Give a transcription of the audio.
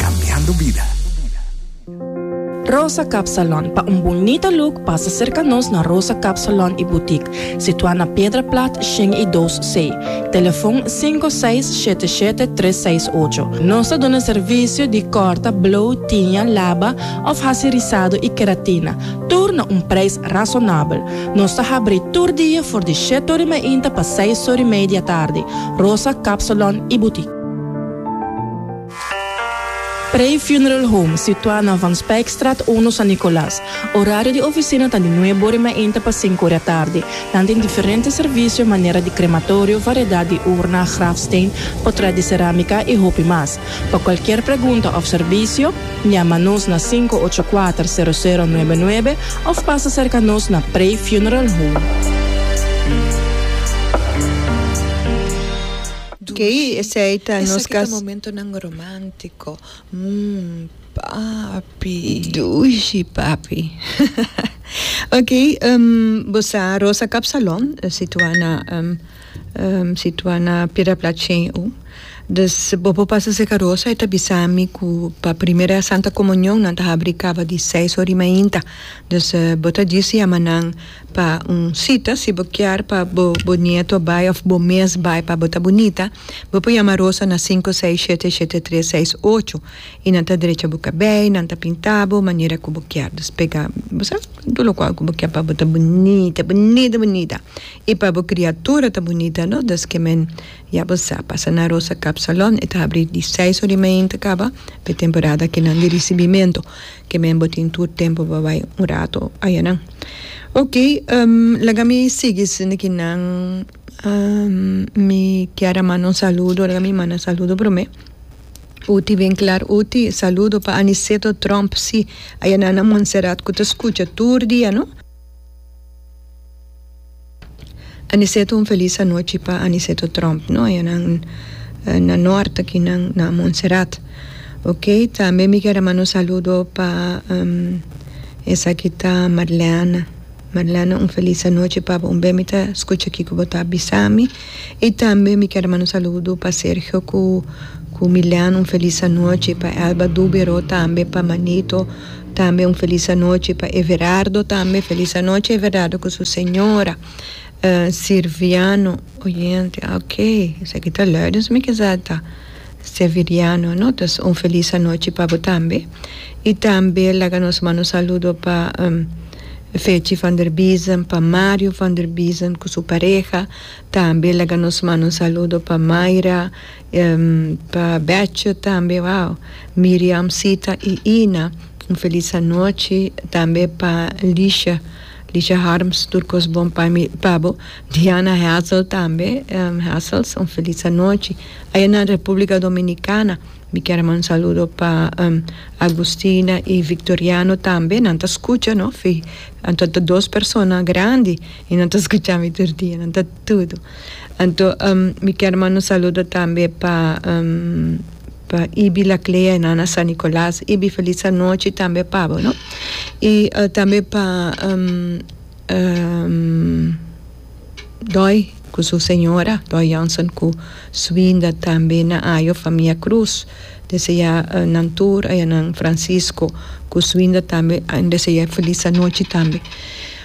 Cambiando vida. Rosa Cap Salon, pa un bunita look pasa cerca nos na Rosa Cap Salon y Boutique, situa na Piedra Plat shen y dos C. Telefon cinco seis shete shete tres seis ocho. Nos ta duna servicio di corta, blow, tiña, laba of haci rizado y keratina, tur na un prijs razonabel. Nos ta habri tur dia for di shete ori mainta pa seis ori mei di atardi. Rosa Cap Salon y Boutique. Prey Funeral Home, situá na Van Spijkstraat uno, San Nicolas. Orario di oficina ta di nuebe ora i mainta pa sinku ora tardi. Nan tin diferente servicio manera di crematorio, variedad di urna, grafsteen, portret di cerámica i hopi mas. Pa cualkier pregunta of servicio, Llama nos na sinku ocho kuater sero sero nuebe nuebe of pasa cerca nos na Prey Funeral Home. Kei esei ta nos Esaki ta momentonan romantico, mm, papi. Dushi, papi. Ok, em, bo sa Rosa Kapsalon, situa na, em, em, situa na Piedraplat Shen U. Dus bo por pasa serka Rosa, e ta bisa mi ku pa primera Santa Komunion nan ta habri kaba di seis ora di mainta. Dus bo ta disi ama nan. Pa un cita, si bo kier pa bo bo nieto bai of bo mes bai pa bo ta bunita, bo por yama Rosa na sinku seis shete shete tres seis ocho y nan ta drecha bo cabey, nan ta pinta bo manera cu bo kier. Dus pega bo sa tur lo cual cu bo kier pa bo ta bunita bunita bunita y pa bo criatura ta bunita no dus que men ya bo sa pasa na Rosa Cap Salon e ta habri di seis ora y media ta caba pa e temporada kinan di ricibimento. ke men bo tin tur tempu pa bai un rato ayanan. Ok, um, laga mi sigui sinti ki nan, um, mi kier a manda un saludo, laga mi manda saludo prome. Uti bien klar, Uti, saludo pa Aniceto Trump, si, ayanan na Monserrat ku ta skucha tur dia, no. Aniceto un felis anochi pa Aniceto Trump no e nan na nort aki nan na Montserrat ok tambe mi quier a manda un saludo pa esaki ta Marleana Marleana un felis anochi pa bo un be mi ta scucha aki cu bo ta bisami y tambe mi quier a manda un saludo pa Sergio cu cu Milean un felis anochi pa Elba Dubero tambe pa Manito. tambe un felis anochi pa Everardo tambe felis anochi Everardo cu su señora Sirviano oyente ok esaki ta Lourdens mi kiza ta Seviriano no entonces un felis anochi pa bo tambe y tambe laga nos manda un saludo pa Fechi van der Biesen pa Mario van der Biesen cu su pareha tambe laga nos manda un saludo pa Mayra. Pa Betcher tambe wou Miriam Sita y Ina un feliz anochi tambe pa Lisha Lisha Harms tur cos bon pa mi pa bo Diana Hazel tambe Hazels un feliz anochi aya na Republica Dominicana mi kier a manda un saludo pa Agustina y Victoriano tambe nan ta scucha no fi anto ta dos persona grandi y nan ta scucha mi tur dia nan ta Tudu. Anto mi kier manda un saludo tambe pa pa Ibi Laclea y Nana San Nicolas. Ibi feliz anochi tambe pa bo no. Y tambe pa Doy cu su señora, Doy Johnson cu su binda tambe na Ajo famia Cruz. Desde ya nan tur a ya nan Francisco cu su binda tambe desde ya feliz anochi tambe.